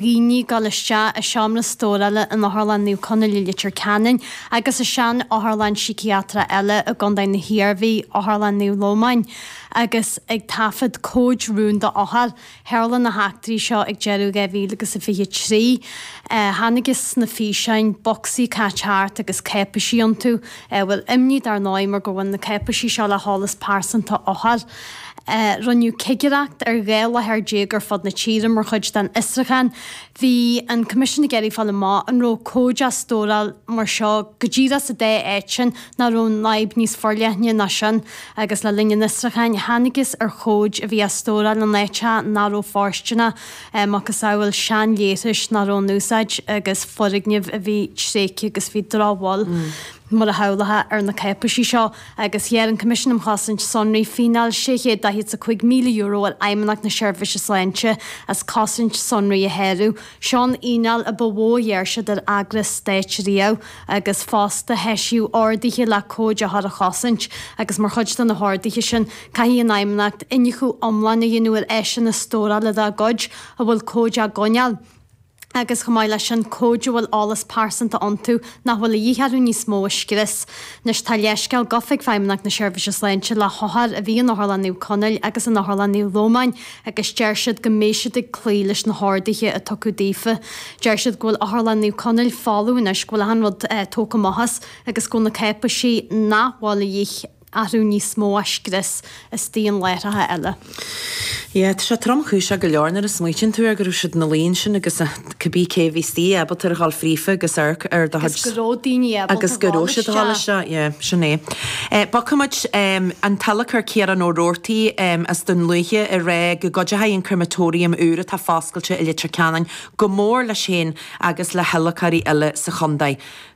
dhaoine ag dul isteach i seomra stórála in Otharlann Naomh Conaill i Leitir Ceanainn agus i sean-otharlann síciatrach eile i gContae na hIarmhí, Otharlann Naomh Lómáin, agus ag taifead comhaid rúnda othar. Tharla na heachtraí seo ag deireadh 2023. Chonacthas sna físeáin bocsaí caite thart agus cáipéisí iontu. Ábhar imní dar ndóigh mar gur bhain na cáipéisí seo le heolas pearsanta othar. Rinneadh cigireacht ar dhá láthair déag ar fud na tíre mar chuid den fhiosrúchán. Bhí an Coimisiún ag iarraidh fáil amach an raibh comhaid á stóráil mar seo go díreach sa dá áit sin nó an raibh an fhadhb níos forleithne ná sin agus le linn an fhiosrúcháin thángthas ar chomhaid a bhí á stóráil in áiteacha nach raibh fóirsteanach macasamhail seanleithris nach raibh in úsáid agus foirgnimh a bhí tréigthe agus bhí drochbhail mar a shamhlófá ar na cáipéisí seo, agus ghearr an Coimisiún um Chosaint Sonraí fíneáil €645,000 ar Fheidhmeannacht na Seirbhíse Sláinte as cosaint sonraí a shárú. Seo an fhíneáil a ba mhó a ghearr siad ar eagras stáit riamh, agus fosta heisíodh orduithe le comhaid othar a chosaint, agus mar chuid de na horduithe sin, caithfidh an Fheidhmeannacht iniúchadh iomlán a dhéanamh ar áiseanna stórála dá gcuid a bhfuil comhaid á gcoinneáil. agus chomh maith leis sin, comhaid a bhfuil eolas pearsanta iontu nach bhfuil a dhíth orthu níos mó a scrios. Anois, tá leithscéal gafa ag Feidhmeannacht na Seirbhíse Sláinte le hothair a bhí in Otharlann Naomh Conaill agus in Otharlann Naomh Lómáin agus deir siad go mbeidh siad ag cloí leis na horduithe a tugadh daofa. Deir siad go bhfuil Otharlann Naomh Conaill folamh anois, go bhfuil achan rud tógtha amach as agus go bhfuil na cáipéisí nach bhfuil a dhíth orthu níos mó scriosta ón láthair eile. Yeah, tá sé tromchúiseach go leor nuair a smaoitíonn tú ar go raibh siad ina luí ansin agus cibí cé a bhí istigh, ábalta a ghabháil fríofa agus amharc ar do chuid. Agus go raibh daoine ábalta a ghabháil isteach. Agus go raibh siad ag gabháil isteach, yeah, sin é. Bogfaidh muid an t-adhlacóir Ciarán Ó Robhartaigh as Dún Lúiche ag rá go gcuideoidh an crematorium úr atá foscailte i Leitir Ceanainn go mór leis féin agus le hadhlacóirí eile sa chontae.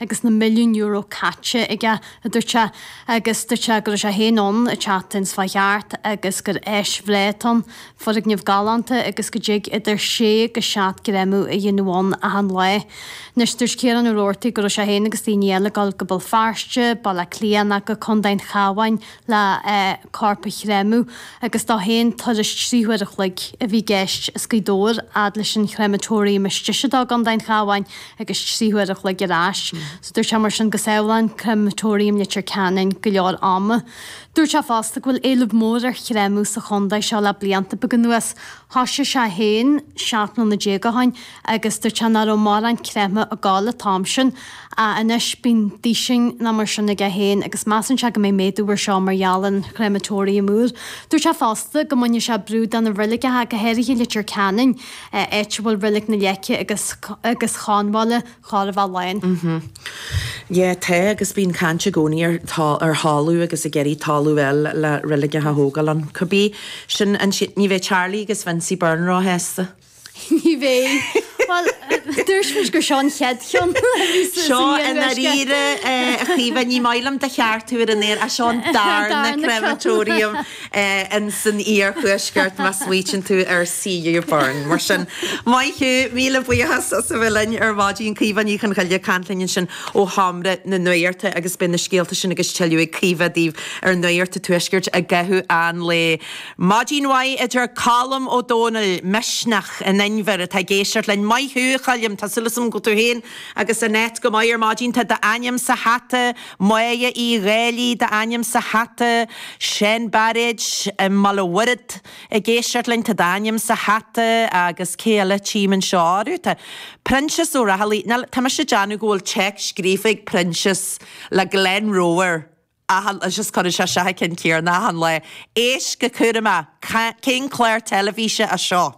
agus na milliúin euro caite aige, a dúirt sé, agus dúirt sé go raibh sé féin ann an tseachtain seo a chuaigh thart agus gur áis bhreá atá ann, foirgneamh galánta agus go dtig idir sé agus seacht gcréamadh a dhéanamh ann achan lá. Anois, dúirt Ciarán Ó Robhartaigh go raibh sé féin agus daoine eile ag dul go Béal Feirste, Baile Átha Cliath ná go Contae an Chabháin, le corp a chréamadh agus dó fhéin turas trí huair a chloig a bhí i gceist as Gaoth Dobhair fhad leis an chréamatóiriam is deise dó i gContae an Chabháin agus trí huair a chloig ar ais So dúirt sé mar sin go sábhálann créamatóiriam Leitir Ceanainn go leor ama Dúirt sé fosta go bhfuil éileamh mór ar chréamadh sa chontae seo le blianta beaga anuas. Thosaigh sé é fhéin seacht mbliana déag ó shin agus dúirt sé nach raibh mórán créamadh ag gabháil an t-am sin, ach anois bíonn duisín ná mar sin aige fhéin agus measann sé go mbeidh méadú air seo mar gheall ar an chréamatóiriam úr. Dúirt sé fosta go mbainfidh sé brú de na reiligeacha, go háirithe i Leitir Ceanainn, áit a bhfuil reilig na Leice agus agus Chonbhála. chóir a bheith lán. Mh. Tá agus bíonn caint i gcónaí ar thalamh agus ag iarraidh talamh eile le reilig a thógáil ann. Cá bith? Sin an t-, ní bheidh Charlie agus Vincy Burn róshásta. Ní bheidh. Bhuel, dúirt muid gur seo an chéad cheann a bhí sa Seo i ndáiríre, a Chaoimhe, ní maith liom do cheartú ar an aer, ach seo an darna Crematorium. ins an iarthuaisceart, má smaoiteann tú ar C.U. Burn. Mar sin, maith thú! Míle buíochas as a bheith linn ar maidin. Caoimhe Ní Chonchoille ag caint linn ansin ó Sheomra na Nuachta agus beidh na scéalta sin agus tuilleadh ag Caoimhe daoibh ar Nuacht an Tuaiscirt i gcaitheamh an lae. Maidin mhaith a deir Colm Ó Domhnaill, Misneach in Inbhear, atá ag éisteacht linn. Maith thú, a Choilm. Tá súil agam go bhfuil tú féin agus Annette go maith ar maidin. Tá d'ainm sa hata. Máire Uí Dhálaigh d'ainm sa hata, Seán Bairéad i mBéal an Mhuirthead ag éisteacht linn, tá d'ainm sa hata agus cé eile tím anseo orthu, tá Proinsias Ó Raghallaigh, ná, tá mise ag déanamh go bhfuil téacs scríofa ag Proinsias le Glenroe air achan lá, just cuireann sé isteach an ceann céanna achan lá, éist go cúramach, cén clár teilifíse é seo?